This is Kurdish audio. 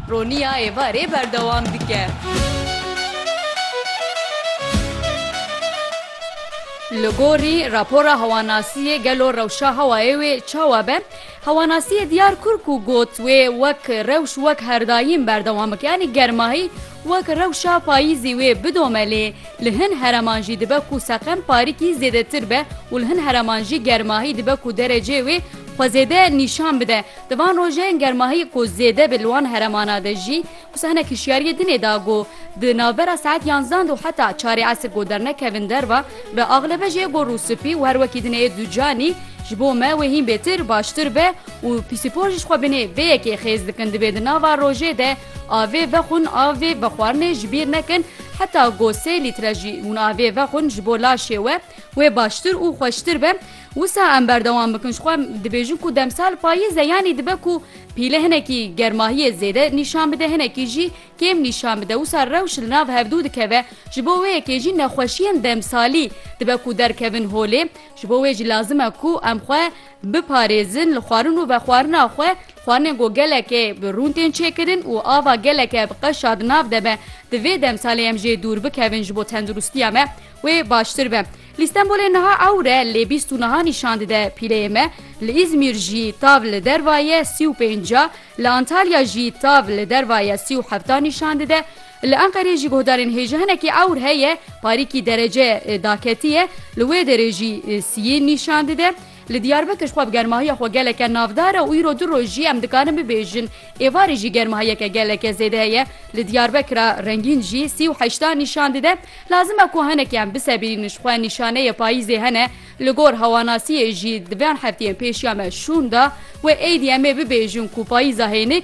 Roniya êvarê berdewam dike. Li gorî rapora hewanasiyê gelo rewşa hewayê wê çawa be? Hewanasiyê diyar kur ku got wê wek rewş wek herdayîn berdewam bike yanî germahî wek rewşa payîzî wê bidome lê li hin hereman jî dibe ku seqem parîkî zêdetir be û li hin hereman jî germahî dibe ku derecê wê xwe zêde nîşan bide. Di van rojeyên germahiyê ku zêde be li wan heremana de jî, wisa hinek hişyariyê din ê da ku di navbera saet yanzan de û heta çarê esr ku dernekevin derve bi axlebe jê ku rûspî û her wekî din ê ducanî ji bo me wê hîn bêtir baştir be û pîsîpor jî ji xwe binê vê yekê xêz dikin divê di nava rojê de avê vexwin avê vexwarinê ji bîr nekin heta ku sê lître jî hûn avê vexwin ji bo laşê we wê baştir û xweştir be. Wisa em berdewam bikin ji xwe dibêjin ku demsal payîz e yanî dibe ku pîle hinekî germahiyê zêde nîşan bide hinekî jî kêm nîşan bide wisa rewş li nav hevdu dikeve ji bo wê yekê jî nexweşiyên demsalî dibe ku derkevin holê ji bo wê jî lazim e ku em xwe biparêzin li xwarin û vexwarina xwe xwarinên ku gelekê bi rûn tên çêkirin û ava geleke bi qeşa di nav de be di vê demsalê em jê dûr bikevin ji bo tendirustiya me Wê baştir be. Li Stenbolê niha ewr e lê bîst û niha nîşan dide pîleyê me. Li Îzmîr jî tav li derva ye sî û pênc a, li Antalya jî tav li derva ye sî û heft a nîşan dide. Li Enqerê jî guhdarên hêj hinekî ewr heye parîkî derece daketiye li wê derê jî siyê nîşan dide. Li Diyarbekir xwe bi germahiya xwe geleke navdar e û îro du roj jî em dikarin bibêjin êvarê jî germahiyeke geleke zêde heye. Li Diyarbekira rengîn jî sî û heşta nîşan dide. Lazim e ku hinekî em bisebirînin ji xwe nîşaneyê payîzê hene. Li gor hewanasiyê jî di van hefteyên pêş ya me şûn da wê êdî em ê bibêjin ku payîza hênik